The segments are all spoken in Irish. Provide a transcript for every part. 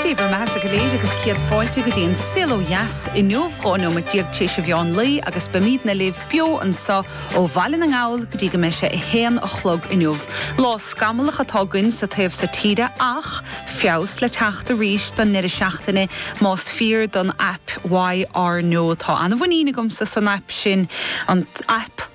Dé bhur mbeatha go léir agus céad fáilte go dtí an Saol Ó Dheas inniu, 12 nóiméad tar éis a mheán lae agus beimídne libh beo anseo ó Bhaile na nGall go dtí go mbeidh sé a haon a chlog inniu. Lá scamallach atá againn sa taobh sa tíre ach feabhas le teacht arís don ndeireadh seachtaine más fíor don aip YR Now. Tá an-mhuinín agamsa san aip sin, an aip.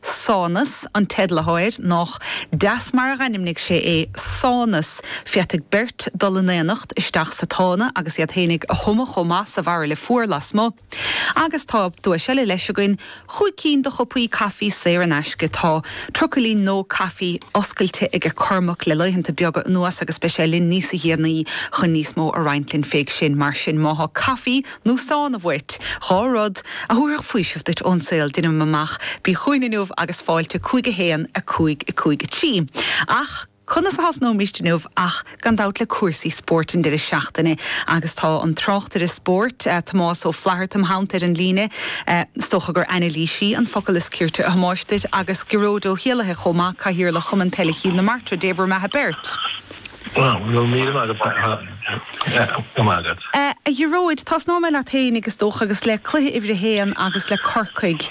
Sánas, an teicneoir, nách deas mar a dhainmnigh sé é, Sánas! Féadfaidh beirt dul in aonacht isteach sa tsána agus iad fhéinig a thumadh chomh maith sa bharaille fuar lasmu'. Agus tá duais eile leis againn, chúig cinn de chupaí caifí saor in aisce. Tá trucailín No Coffee oscailte aige Cormac le laethanta beaga anuas agus beidh sé linn níosa dhéanaí chun níos mó a roinnt linn. Féach sin, mar sin, má thá caifí, nó sána uait, dhá rud, a thabharfadh faoiseamh duit ón saol, deinim amach, bí chugainn inniu agus fáilte 5 1 5 5 3 Ach conas a thosnóimíst inniu ach gan dabht le cúrsaí spóirt an deireadh seachtaine agus tá an tráchtaire spóirt, Tomás Ó Flatharta im' theannta ar an líne. Is dócha gur anailísí an focal is cirte a Thomáis duit agus Gearóid Ó hÉalaithe chomh maith, Cathaoirleach Chumann Peile Chill na Martra, Dé bhur mbeatha beirt. A Ghearóid, tosnóidh mé leat féin agus is dócha, agus le cluiche uimhir a haon agus le Corcaigh.